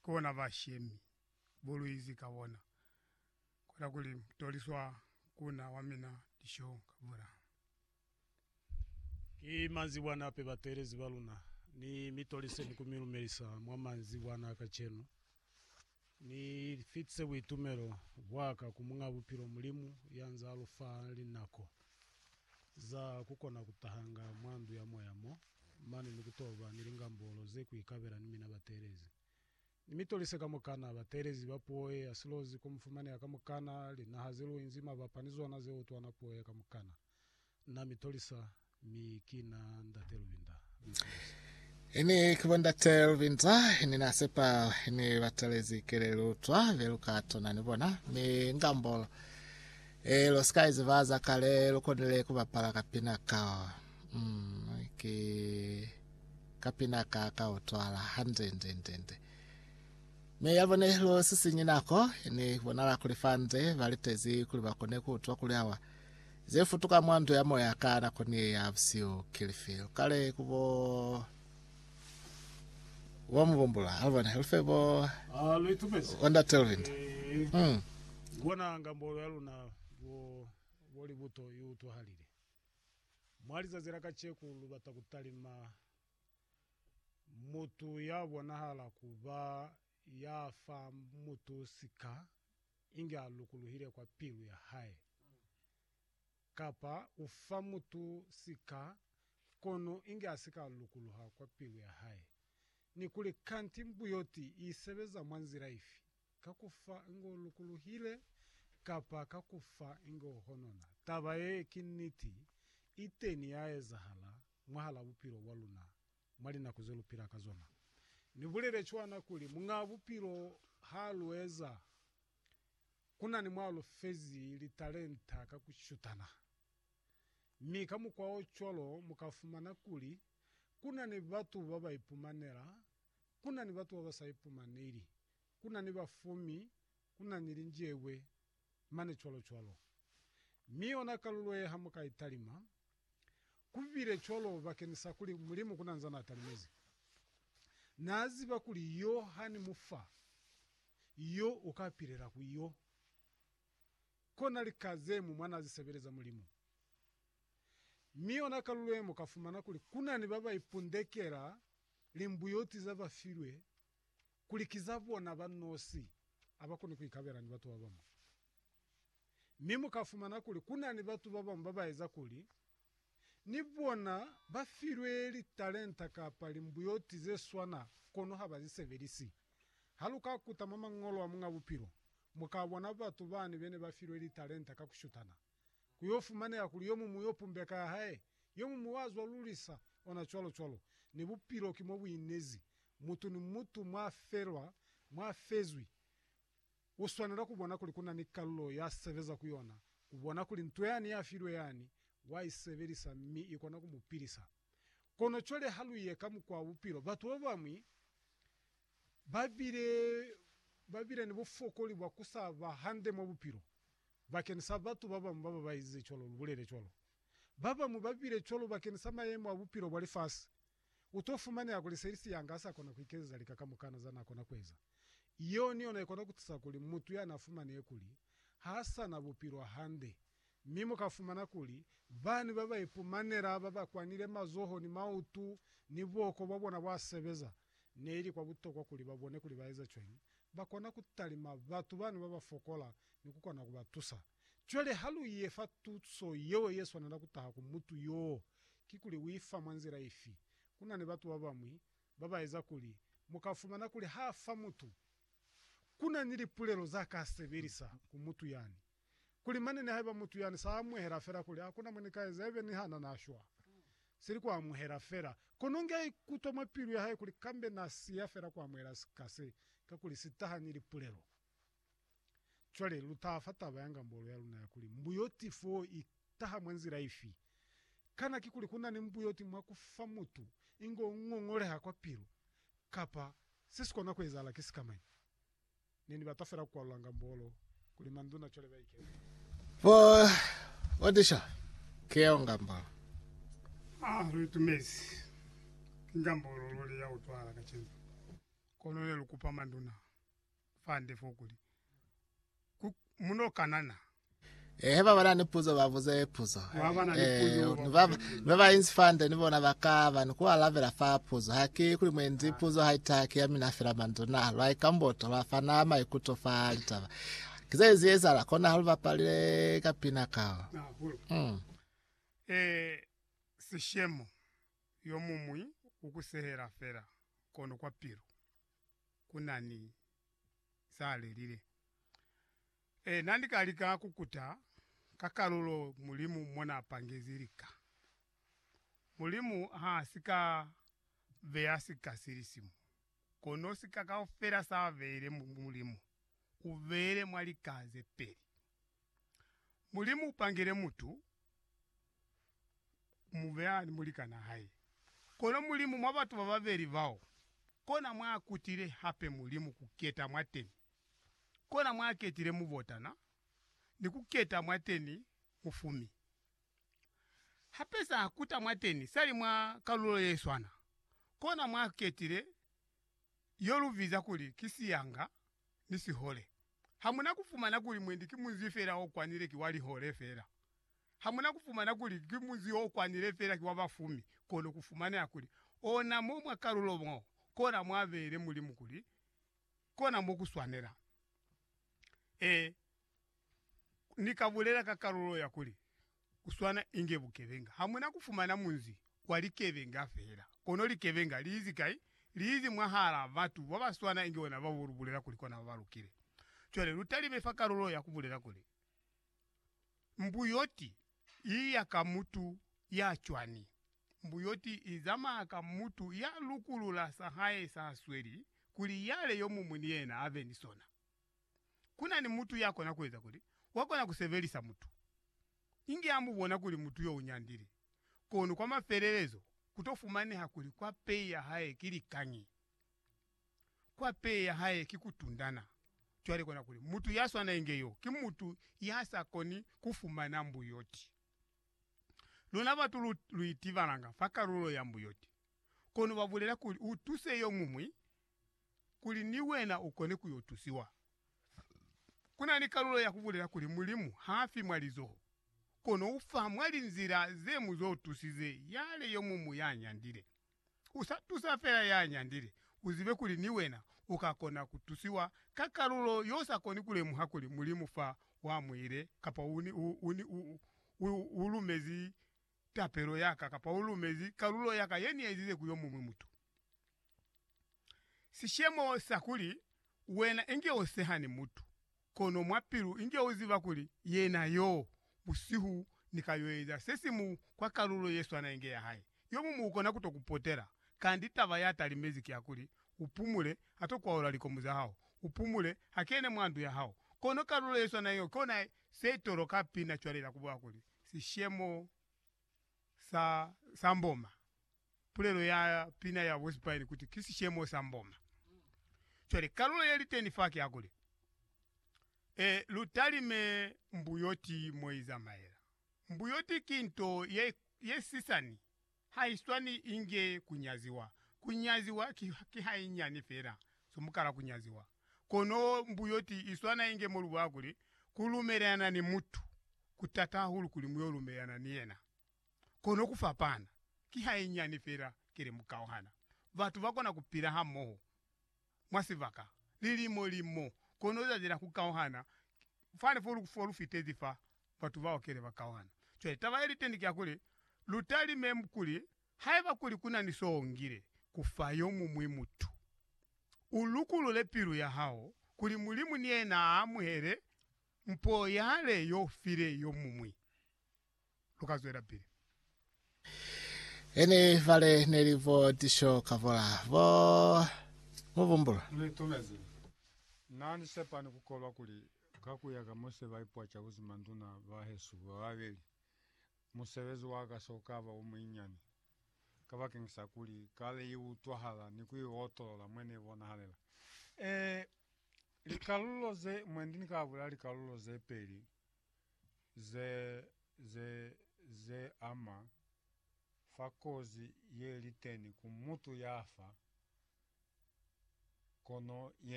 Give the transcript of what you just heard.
kona ba shemi buluizi ka bona, kona kuli mutoliswa kuna wa mina disho ka bona. Ki manzibwana ape bateelezi ba luna? Ni mi toliseni ku mi lumelisa mwa manzibwana a kacenu. Ni fitise buitumelo bwaka ku Muñ'a Bupilo, Mulimu, ya nz'a lu fa linako. Za kukona kutahanga mwa ndu ya moya mo, mane ni kutoba ni lingambolo ze kuikabela ni mina bateelezi. Ni mitolise kamukana, bateelezi ba puo ye ya silozi ku mufumaneha kamukana linaha ze luinzi mabapa ni zona ze utwana puo ye kamukana. Na mitolisa, mi ki na Ndate Lubinda. Ini kuba ndate Lubinza ini na sepa ini batalezi kele lutwa be luka tona ni bona mi ngambolo e lo sika iziba za kale lukonile kubapala kapina ka mm, ki kapina ka ka utwala hande nde nde nde mi yabone lo sisinyi nako ini bonala kuli fande balitezi kuli bakone kutwa kuli awa Ze futuka mwa nto ya moya ka nako ni ye ya busihu ki lifi? Lu kale ku bo bo mu bumbula. A lu bone. Lu fe bo bo Ndate Luvindi. Hmm. Lu bona ngambolo ya luna bo bo libuto i utwahalile. Mwa lizazi la kaceku lu bata ku talima mutu ya bonahala ku ba ya fa mutu sika. inge a lukuluhile kwa pilu ya hae, kapa u fa mutu sika, kono inge a si ka lukuluha kwa pilu ya hae. Ni kuli, kanti mbuyoti i sebeza mwa nzila ifi? Ka ku fa inge u lukuluhile, kapa ka ku fa inge u honona. Taba ye ki niti, iteni ya ezahala mwahal'a bupilo bwa luna Mwa linako ze lu pila ka zona, ni bulele cwana kuli Muñaa Bupilo ha lu eza ku na ni mwa lu fezi litalenta ka ku shutana. Mi ka mukwa o cwalo mu ka fumana kuli ku na ni batu ba ba ipumanela, ku na ni batu ba ba sa ipumaneli, ku na ni bafumi, ku na ni linjebwe, mane cwalo cwalo. Mi yona kalulo ye ha mu ka i talima, Ku bile cwalo bakeni sa kuli Mulimu ku na nzaa na talimezi. Na ziba kuli yo ha ni mu fa, yo u ka pilela ku yo. Kona lika ze mu mwa na zi sebeleza Mulimu. Mi yona kalulo ye mu ka fumana kuli ku na ni ba ba ipundekela limbuyoti za ba filwe kuli ki za bona ba nosi, ha ba koni ku ikabela ni batu ba bamwi. Mi mu ka fumana kuli ku na ni batu ba bañwi ba ba eza kuli ni bona ba filwe litalenta kapa limbuyoti ze swana kono ha ba li sebelisi. Ha lu ka kuta mwa Mañolo a Muñ'a Bupilo, mu ka bona batu bani be ne ba filwe litalenta ka ku shutana. Ku yo fumaneha kuli yo muñwi yo pumbeka ya hae, yo muñwi wa zwa lulisa, ona cwalo-cwalo. Ni bupilo ki mo bu inezi. Mutu ni mutu mwa felwa, mwa fezwi, U swanela ku bona kuli ku na ni kalulo ya sebeza ku yona, ku bona kuli nto yani ya filwe yani, wa i sebelisa mi i kona ku mu pilisa. Kono cwale ha lu ye ka mukwa wa bupilo, batu ba bañwi ba bile, ba bile ni bufokoli bwa ku sa ba hande mwa bupilo. Bakeni sa batu ba bañwi ba ba ba ezize cwalo, lu bulele cwalo. Ba bañwi ba bile cwalo bakeni sa mayemo a bupilo bwa lifasi. U to fumaneha kuli seli siyanga ha sa kona ku ikezeza lika kamukana za na kona ku eza. Yeo ni yona i kona ku tusa kuli mutu ya na fumanehe kuli ha sa na bupilo hande. Mi mu ka fumana kuli bani ba ba ipumanela ba ba kwanile mazoho ni mautu ni buoko bwa bona bwa sebeza. Ne ili kwa butokwa kuli ba bone kuli ba eza cwañi ba kona ku talima batu bani ba ba fokola ni ku kona ku ba tusa. Cwale ha lu ye fa tuso yeo ye swanela ku taha ku mutu yoo, kikuli u i fa mwa nzila ifi? Ku na ni batu ba bañwi ba ba eza kuli mu ka fumana kuli ha fa mutu, ku na ni lipulelo za ka sebelisa ku mutu yani, kuli mane ni haiba mutu yani sa amuhela fela kuli, Ha ku na mo ni ka eza, ibe niha na na shwa, seli ku amuhela fela. Kono nge a ikutwa mwa pilu ya hae kuli kambe na siya fela ku amuhela sika se, kakuli si taha ni lipulelo. Cwale lu taha fa taba ya ngambolo ya luna ya kuli, Mbuyoti fo i taha mwa nzila ifi? Kana kikuli ku na ni mbuyoti mwa ku fa mutu ingo u ngongoleha kwa pilu, kapa se si kona ku ezahala ki sikamañi? Ne ni bata fela ku kwalula ngambolo kuli manduna cwale ba ikeze. Bo Otisha, ki yeo ngambolo. A lu itumezi. Ki ngambolo luli ya utwahala kacenu. Kono ne lu kupa manduna. fande fo kuli, Ku mu no kanana. Eh, he ba ba na ni puzo ba buze puzo. Ba ba na ni Eh, puzo ba ni ba buze puzo. ni ba ba inzi fande ni bona ba ka ba ni ku alabela fa puzo. Ha ki kuli mwendi puzo ha i taha ki ya mina fela manzwi na lwa ikamboto lwa fana maikuto fa litaba. Ki ze ize ezahala kona ha lu bapalile ka pina kao. Hahulu. Mm. Eh, sishemo yo muñwi u ku sehela fela kono kwa pilu. ku na ni za lelile. Ee, na ni ka lika ku kuta ka kalulo Mulimu mo na pangezi lika. Mulimu ha si ka beya sika si li simu, kono sika kaufela sa beile Mulimu u beile mwa lika ze peli. Mulimu upangile mutu mubeya ni mulikana hae. Kono Mulimu mwa batu bababeli bao, kona mwaakutile hape Mulimu kuketa mwateni. Kona mwaaketile mubotana ni kuketa mwateni mufumi. Hape saakuta mwateni sali mwa kalulo yeswana. Kona mwaaketile yolubiza kuli ki siyanga ni sihole. Hamuna kufumana kuli mwendi ki munzi fela o kwanile ki wa lihole fela. Hamuna kufumana kuli ki munzi o kwanile fela ki wa bafumi, kono kufumaneha kuli ona mo mwa kalulo mo kona mwa beile Mulimu kuli kona mo ku swanela. Ee, Ni ka bulela ka kalulo ya kuli, ku swana inge bukebenga. Ha mu na ku fumana munzi wa likebenga fela, kono likebenga li izi kai? Li izi mwahal'a batu ba ba swana inge bona ba bo lu bulela kuli kona ba ba lukile. Cwale lu talime fa kalulo ya ku bulela kuli, Mbuyoti i ya ka mutu ya cwani? Mbuyoti i zamaya ka mutu ya lukulula sa hae sa sweli, kuli yale yo mumwi ni yena a be ni sona. ku na ni mutu ya kona ku eza kuli wa kona ku sebelisa mutu, inge a mu bona kuli mutu yo u nyandile, kono kwa mafelelezo ku to fumaneha kuli kwa pei ya hae ki likañi. Kwa pei ya hae ki ku tundana. Cwale kona kuli mutu ya swana inge yo ki mutu ya sa koni ku fumana mbuyoti. Luna batu lu, lu itibalanga fa kalulo ya mbuyoti, kono ba bulela kuli u tuse yo muñwi, kuli ni wena u kone ku yo tusiwa. Ku na ni kalulo ya ku bulela kuli Mulimu ha fi mwa lizoho, kono u fa mwa linzila ze mu zo tusize yale yo muñwi ya nyandile. U sa tusa fela ya nyandile, u zibe kuli ni wena u ka kona ku tusiwa ka kalulo y'o sa koni ku lemuha kuli Mulimu fa wa muile kapa u ni u lumezi tapelo ya ka kapa u lumezi kalulo ya ka ye ni ezize ku yo muñwi mutu. Sishemo sa kuli wena inge u sehani mutu, kono mwa pilu inge u ziba kuli yena yo, busihu ni ka yo eza se si mu kwa kalulo ye swana inge ya hae, yo muñwi u kona ku to ku potela. Kanti taba ya talimezi ki ya kuli u pumule, ha to kwaula likomu za hao, u pumule, ha kene mwa ndu ya hao. Kono kalulo ye swana yeo ki yona se toloka pina cwale la ku bula kuli, sishemo sa sa mboma pulelo ya pina ya bospaini kuti ki sishemo sa mboma cwale kalulo ye liteni fa ki ya kuli e lu talime mbuyoti mo izamaela mbuyoti ki nto ye ye sisani Haiswani inge kunyaziwa. Kunyaziwa ki, ki hainyani fela so mukala kunyaziwa. Kono mbuyoti iswana inge mo lubona kuli, kulumelelana ni mutu kutata hahulu kuli muyo lumelelana ni yena. Kono kufapana, ki hainyani fela kele mukauhana. Batu bakona kupila hamoho. mwa sibaka lilimo limo, kono u tatela ku kauhana fani fo lu, fo lu fitezi fa batu bao kele ba kauhana. Cwale taba ye li teni ki ya kuli, lu talime kuli haiba kuli ku na ni so u ngile ku fa yo muñwi mutu, u lukulule pilu ya hao kuli Mulimu ni yena a amuhele mpo yale yo u file yo muñwi. lu ka zwelapili. Ene vale ne li bo Tisho Kavola, bo Mubumbulu. Ni itumezi. Na ni sepa ni ku kolwa kuli, ka ku ya ka mo se ba ipwaca ku zima nduna ba hesu ba babeli, musebezi wa ka s'o ka ba o munyinyani, kabakeng sa kuli kale i utwahala ni ku i otolola mwe ne bonahalela. Ee, likalulo ze, mwendi ni ka bula likalulo ze peli ze, ze, ze ama fa kozi ye li teni ku mutu ya fa, kono yena.